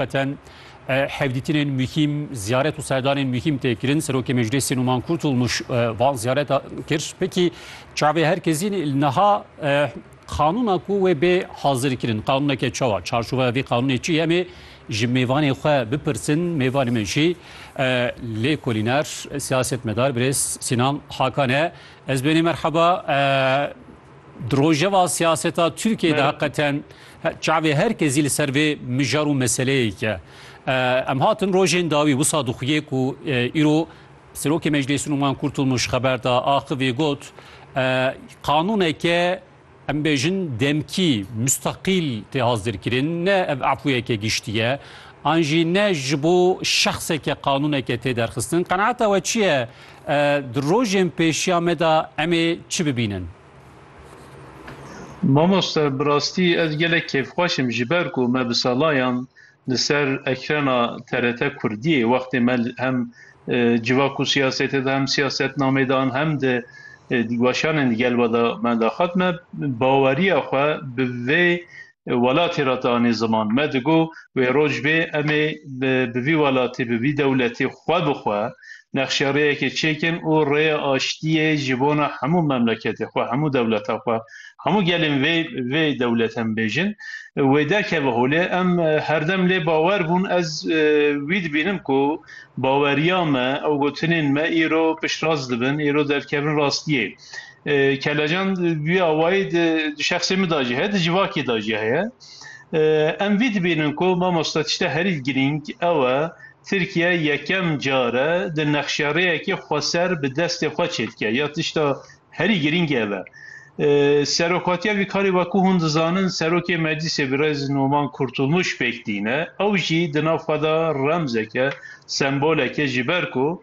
Zaten hevdîtinên muhîm, ziyaret û serdanên muhîm tê kirin. Serokê Meclîsê Numan Kurtulmuş van ziyareta kir. Pekî çavê her kesî niha qanûna ku wê bê hazirkirin qanûneke çawa çarçoveya vê qanûnê çi em ê ji mêvanê xwe bipirsin mêvanê min jî lêkolîner siyasetmedar birêz Sînan Hakan e ez bênê merheba Di rojeva siyaseta Tirkiyeyê de heqeten çavê her kezî li ser vê mijar û meseleyêk e. Em hatin rojên dawî wisa dixuyê ku îro Serokê Meclêsî Numan Kurtulmuş xeber da axivî got qanûneke em bêjin demkî mustaqîl tê hazirkirin ne ev afûyeke giştî ye an jî ne ji bo şexseke qanûneke tê derxistin. Qenaeta we çi ye? Di rojên pêşiya me de em ê çi bibînin? Mamoste bi rastî ez gelek kêfxweş im ji ber ku me bi salayan li ser ekrana TRT Kurdiyê wextê me hem civa ku siyasetê de hem siyasetnamê de an hem di dîgwaşanên digel ve de me daxat me baweriya xwe bi vê welatê re danê ziman. Me digot wê rojbê em ê bi vî welatê, bi vî dewletê xwe bi xwe nexşerêyekê çêkin û rêya aştiyê ji bona hemû memleketê xwe, hemû dewleta xwe, hemû gelên vê vê dewletê em bêjin wê derkeve holê. Em herdem lê bawer bûn. Ez wî dibînim ku baweriya me, ew gotinên me îro piştrast dibin, îro derkevin rastiyê. Kelecan wî awayî di şexsê min da jî heye, di civakê da jî heye. Em vî dibînin ku mamosta tişta herî girîng ew e Tirkiye yekem car e di nexşerêyekê xweser bi destê xwe çêdike ya tişta herî girîng ev e. Serokatiya vî karê wekû hûn dizanin Serokê Meclîsê Birêz Noman Kurtulmuş pêk tîne. Ew jî di nav xwe de remzek e, sembolek e ji ber ku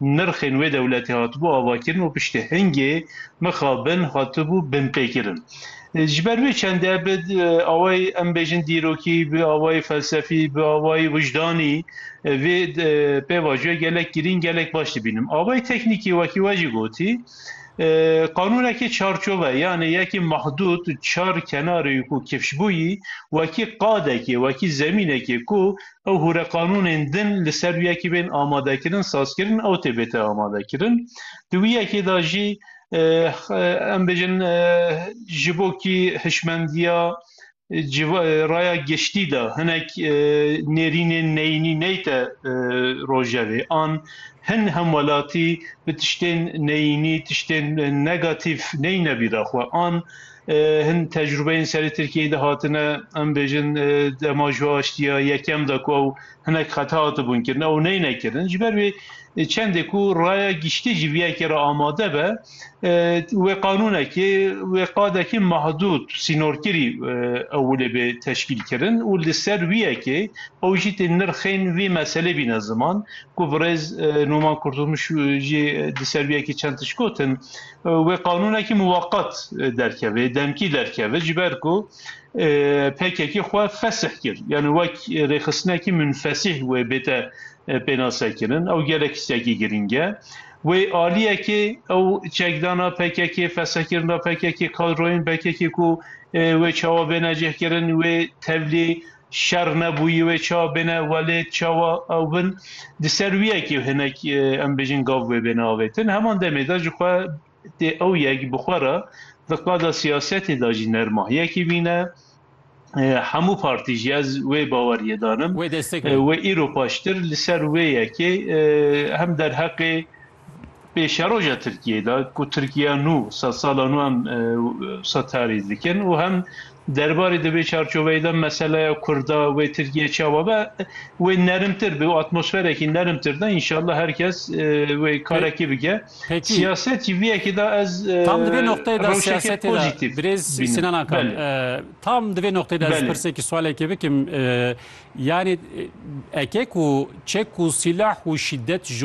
nirxên wê dewletê hatibû avakirin û piştî hingê mixabin hatibû binpêkirin. Ji ber wê çende bi awayê em bêjin dîrokî, bi awayê felsefî, bi awayê wijdanî vê pêvajoyê gelek girîng, gelek baş dibînim. Awayê teknîkî wekî we jî gotî, qanûnekî çarçove yanê yekî mahdûd, çar kenarê ku kifşbûyî wekî qadekê, wekî zemînekê ku ew hûre qanûnên din li ser wî yekê bên amadekirin, sazkirin ew tê bête amadekirin. Di wî yekê de jî em bêjin ji bo kî hişmendiya raya giştî de hinek nêrînên neyînî neyte rojevê an hin hemwelatî bi tiştên neyînî, tiştên negatif neyne bîra xwe an Hin tecrûbeyên serê Tirkiyeyê de hatine em bêjin dema ji aştiya yekem de ku ew hinek xeta hatibûn kirin ew neyne kirin. Ji ber wê çendê ku raya giştî ji vî yekê re amade be wê qanûnekê wê qadekî mahdûd sînorkirî ew li bê teşkîl kirin û li ser wî yekê ew jî tê nirxên vî meselê bîne ziman ku birêz Nûman Kurtulmuş jî li ser wî yekê çend tişt gotin wê qanûnekî muweqet derkeve, demkî derkeve ji ber ku PKK xwe fesih kir. Yani wek rêxistinekî munfesîh wê bête pênasekirin. Ew gelek tiştekî girîng e. Wê aliyekê ew çekdana PKK, fesihkirina PKK, kadroyên PKK ku wê çawa bêne cihkirin, wê tevlî Şer nebûyî wê çawa bêne welê çawa ew bin di ser wî yekî hinek em bêjin gav wê bêne avêtin. Heman demê de ji xwe tê ew yek bi xwe re di qada siyasetê de jî nerma. Yekî bîne hemû partî jî ez wê baweriyê danim. Wê destek bê. Wê îro paştir li ser wê yekê hem derheqê. pêşeroja Tirkiyeyê de ku Tirkiya nû sed sala nû em setarî dikin û hem derbarê di vê çarçoveyê de meseleya Kurda wê Tirkiye çawa be wê nerimtir bi atmosferekî nerimtir de înşallah her kes wê karekî bike. Siyaset jî vê yekê de ez tam di vê noqteyê de siyasetê de birêz Sinan Akan tam di vê noqteyê de ez pirsekî swalekê bikim yanî eke ku çek û sîlah û şîdet ji